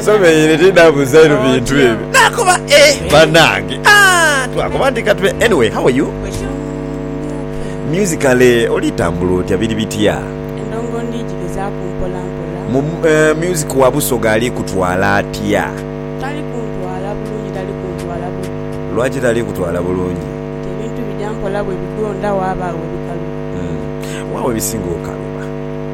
Nsobeire tidha buzairu bintu ebyo nakoba eeh banange aah twakoba nti katube anyway how are you musically oli tambula otya biri bitya. Endongo ndi gigezaaku mpola mpola. Mu music wa Busoga ali kutwala atya? Tali kuntwala bulungi tali kuntwala bubi. Lwaki tali kutwala bulungi? Nti ebintu bigya mpola bwe bigonda waaba we bikalubira. Wa we bisinga okaluba?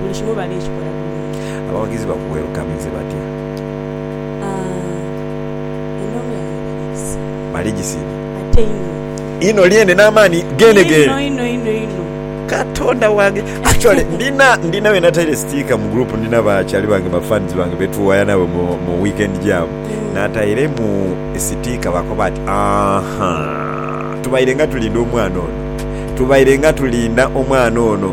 buli kimu bali kikola bulungi. Abawagizi ba ku welukamize batya? Aah, endhovu yange bali gisiima. Bali gisiima. Ate inho. Inho lyene n'amaani geenegeene. Inho, inho, inho, inho. Katonda wange! Actually, ndina, ndina be nataire sticker mu group, ndina bakyali bange, ba fans bange be tuwaya nabo mu, mu Weekend Jam. Natairemu sticker bakoba ati, Aahhaa! Tubairenga tulinda omwana ono. Tubairenga tulinda omwana ono.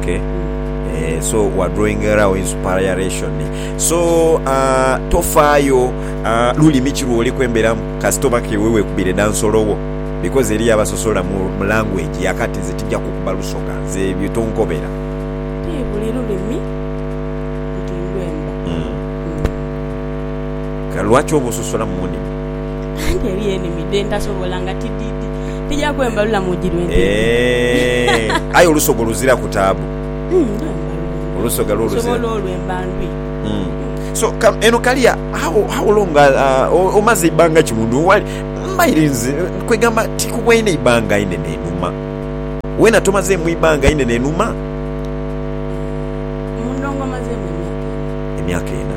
Okay. Eh, so wa drawing around inspiration so uh, tofaayo uh, lulimi ki lwoli kwemberamu kasita oba kewe wekubire dansolowo because eriyo abasosola mu, mu language yakati nze tija kukuba lusoga nze ebyo tonkobera Ti buli lulimi nti ndwemba. mm. Kale lwaki oba ososola mu ndimi Anti eriyo enimi dhe ntasobola nga tididi. Aye olusoga oluziraku taabu. Olusoga lwo eno kalia how long omaze ibanga ki mundu wali mbaire nze kwegamba tikubwaine ibanga inene inuma wena tomazemu ibanga inene inuma emyaka ena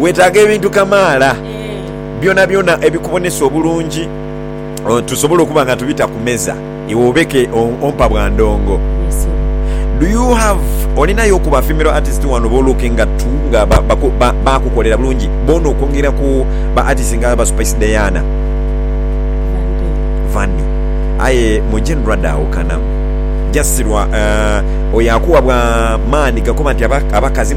Weetaaga ebintu kamaala byonabyona ebikubonesa obulungi tusobole okuba nga tubita ku meza iwe obeke ompa bwa ndongo. Do you have olinayo ku ba female artist wano bo looking at to nga baakukolera bulungi boona okwongera ku ba artist nga ba Spice Diana, Vanny aye mu general dhaawukanamu just lwa oyo akuwa bwa maani gakoba nti abakazi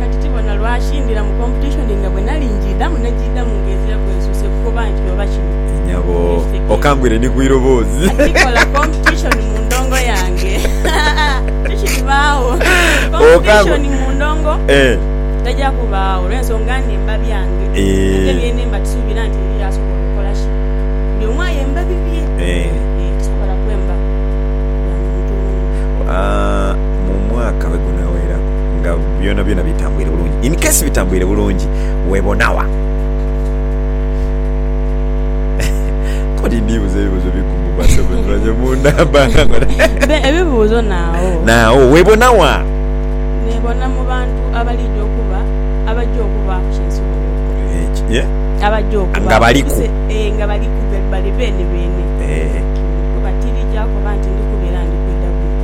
Kati tibona lwaki ndira mu competition nga bwenali njiidamu najiidamu nga ezira gwe nsuuse kukoba nti oba kino Nyabo okangwire ni kwiroboozi. Atikola competition mu ndongo yange haa tikiribaagho competition mu ndongo taja kubaagho olwensonga nti emba byange ate byena emba tisuubira nti eriyo asobola okola ki buli omu ayemba bibye eeh tisobola kwemba bya muntu wundi. mu mwaka bwe gunaaweraku nga byonabyona bitambwire bulungi. In case bitambwire bulungi, weebona wa? Kati ndibuza ebibuzo bigumu basebo nibanye munda mbanga ngona. Be ebibuzo nawo. Nawo webona wa? Nebona mu bantu abalija okuba abaja okuba ku kinsulo ekyo. Ye? Abaja okuba. Nga baliku. Ee nga baliku bali beene beene. Ee. Kuba tirija kuba nti ndikuba era ndi kwidha bwidha.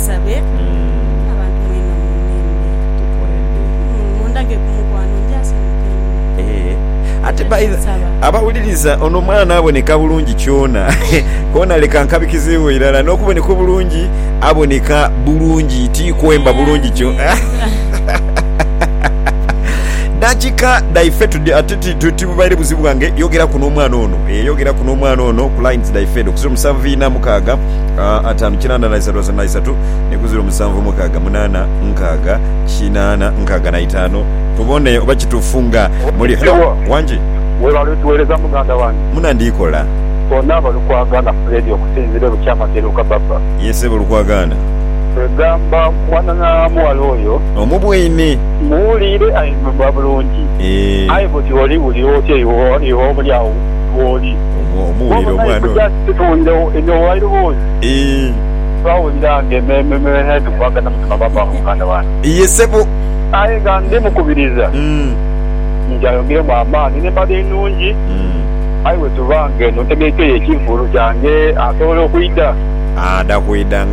Abasomesa be na bantu mwenna mundinde. Mundage ku mukwano nja sanhuka einho. Ate nsaba. Abawuliriza, ono mwana aboneka bulungi kyona kona leka nkabikizibwe irala nokuboneka obulungi aboneka bulungi ti kwemba bulungi kyona Nakika dhaife tudye ate tibubaire buzibu bwange yogeraku nomwana ono yogeraku nomwana ono ku lines dhaife edho kuziro musanvu ina mukaaga ataanu kinaana na isatu asatu na isatu neku ziro musanvu mukaaga munaana nkaaga kinaana nkaaga na itaanu tubone oba kituufu nga muli. Hello wangi. Webale otuwereza muganda wange. Muna ndikola. Onaaba Lukwagana Fred okusinzira e Bukyamagere oka Baba? Yee sebo Lukwagana. Kwegamba mwana na mughala oyo. Omu bweine. Muwuliire aye mba bulungi. Eeh. Aye bwoti oli wulira otya iwe oba oli awo wooli. Omuwuliire omwana oyo. Titwongewo enyo while was twawulira nga emeeme me head kubaga namutima baba nga muganda wange. Iye sebo. Aye nga ndi mukubiriza nti ayongeremu amaani nembali enungi aye wetuba nga eno ntegekeyo ekivulu kyange asobola okwida. Ada kwida nga.